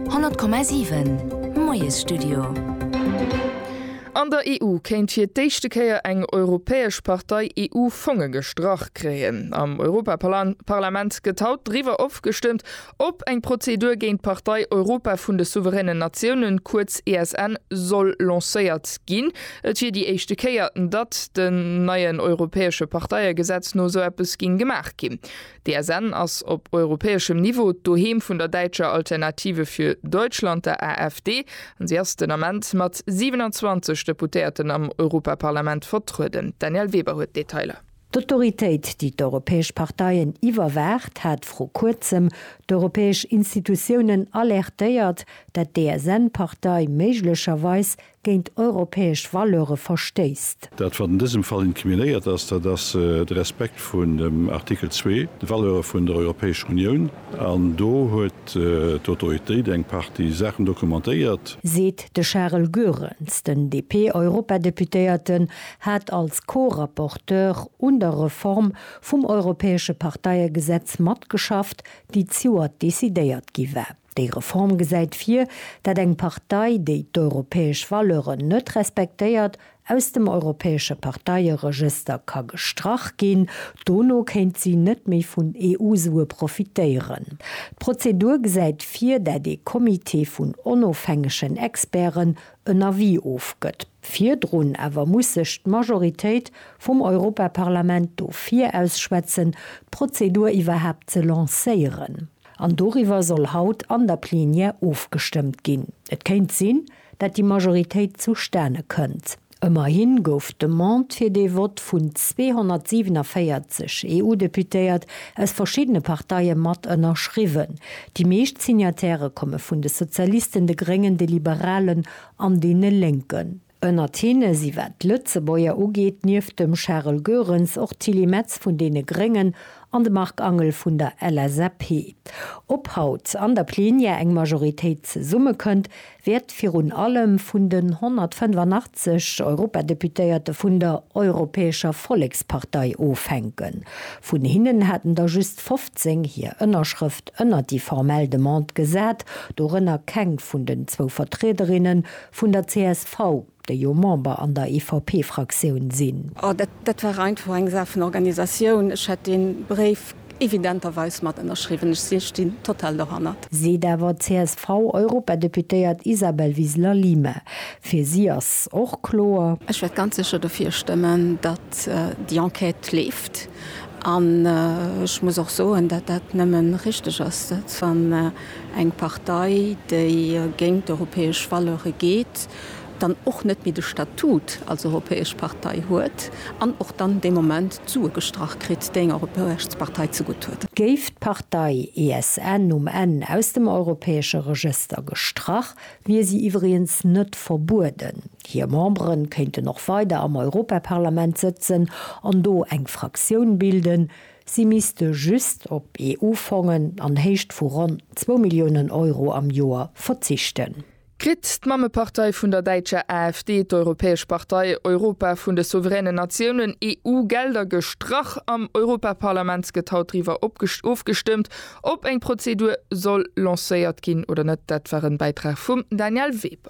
100,7 Moiesstudio. An der EU kéint fir d'éischte Kéier eng europäesch Partei EU-Fonge gestrach kréien. Am Europaparlament gëtt haut driwwer ofgestëmmt, ob eng Prozedur géint d'Partei Europa vun de souveränen Natiounen, kuerz ESN, soll lancéiert ginn. Et wier déi éischte Kéier, datt dem neien europäesche Parteiegesetz no esou eppes géing gemaach ginn. D'ESN ass op europäeschem Niveau d'Doheem vun der däitscher Alternative für Deutschland, der AfD, an si ass den Ament mat 27 Deputéierten am Europaparlament vertrueden. D'Danièle Weber huet d'Detailer. D'Autoritéit, déi d'europäesch Parteien iwwerwaacht, hat vru Kuerzem d'europäesch Institutiounen alertéiert, dat d'ESN-Partei méiglecherweis géint europäesch Valeure verstéisst. Dat, wat an dësem Fall incriminéiert ass, dat ass de Respekt vun dem Artikel zwee, de Valeure vun der Europäescher Unioun. An do huet d'Autoritéit eng Partie Saachen dokumentéiert. Seet de Charel Goerens. Den DP-Europadeputéierte hat als Co-Rapporteur un der Reform vum europäesche Parteiegesetz matgeschafft, déi d'Joer decidéiert gi war. Déi Reform gesäit vir, dat eng Partei, déi d'europäesch Valeuren net respektéiert, aus dem europäesche Parteieregëster ka gestrach ginn. Dono kéint si net méi vun EU-Sue profitéieren. D'Prozedur gesäit vir, dat ee Comité vun onofhängegen Experten en Avis ofgëtt. Virdrun awer muss sech d'Majoritéit vum Europaparlament dofir ausschwätzen, d'Prozedur iwwerhaapt ze lancéieren. An doriwwer soll haut an der Plenière ofgestëmmt ginn. Et kéint sinn, dat déi Majoritéit zustane kënnt. Ëmmerhi gouf d'Demande fir dee Vott vun 247 EU-Deputéiert aus verschiddene Parteie mat ënnerschriwwen. Déi meescht Signatairë komme vun de Sozialisten, de Gréngen, de Liberalen an deene Lénken. Ënnert hinne si wat d'Lëtzebuerger ugeet nieft dem Charel Goerens och d'Tilly Metz vun deene Gréngen an de Marc Angel vun der LSAP. Ob haut an der Plenière eng Majoritéit zesummekënnt, wäert virun allem vun den 185 Europadeputéierte vun der Europäescher Vollekspartei ofhänken. Vun hinnen haten der just 15 hir Ënnerschrëft ënnert déi formell Demande gesat, dorënner keng vun den zwou Vertriederinne Vun der csv, déi jo Member an der EVP-Fraktioun sinn. Oh, dat war einfach eng Saach vun Organisatioun. Ech hätt dee Bréif evidenterweis mat ënnerschriwwen. Ech stinn total dohannert. Seet awer d'CSV-Europadeputéiert Isabel Wiseler-Lima. Fir si ass och kloer. Ech wäert ganz sécher dofir stëmmen, datt déi Enquête leeft. An ech muss och soen, datt dat nëmme richteg ass, datt wann. Eng Partei, déi géint europäesch Valeure geet, dann och net méi de Statut als europäesch Partei huet an och dann dee Moment d'Sue gestrach kritt, déi enger europäesch Partei zegutt huet. Géif d'Partei ESN um Enn aus dem europäesche Regëster gestrach, wier si iwwregens net verbueden. Hir Membere kéinten och weider am Europaparlament sëtzen an do eng Fraktioun bilden, Si misste just op EU-Fongen an Héicht vu ronn zwou Milliounen Euro am Joer verzichten. Kritt d'Mammepartei vun der däitscher AfD, d'Europäesch Partei, Europa vun de souveränen Natiounen, EU, Gelder gestrach? Am Europaparlament gëtt haut driwwer ofgestëmmt, ob eng Prozedur soll lancéiert ginn oder net. Dat war en Bäitrag vum Daniel Weber.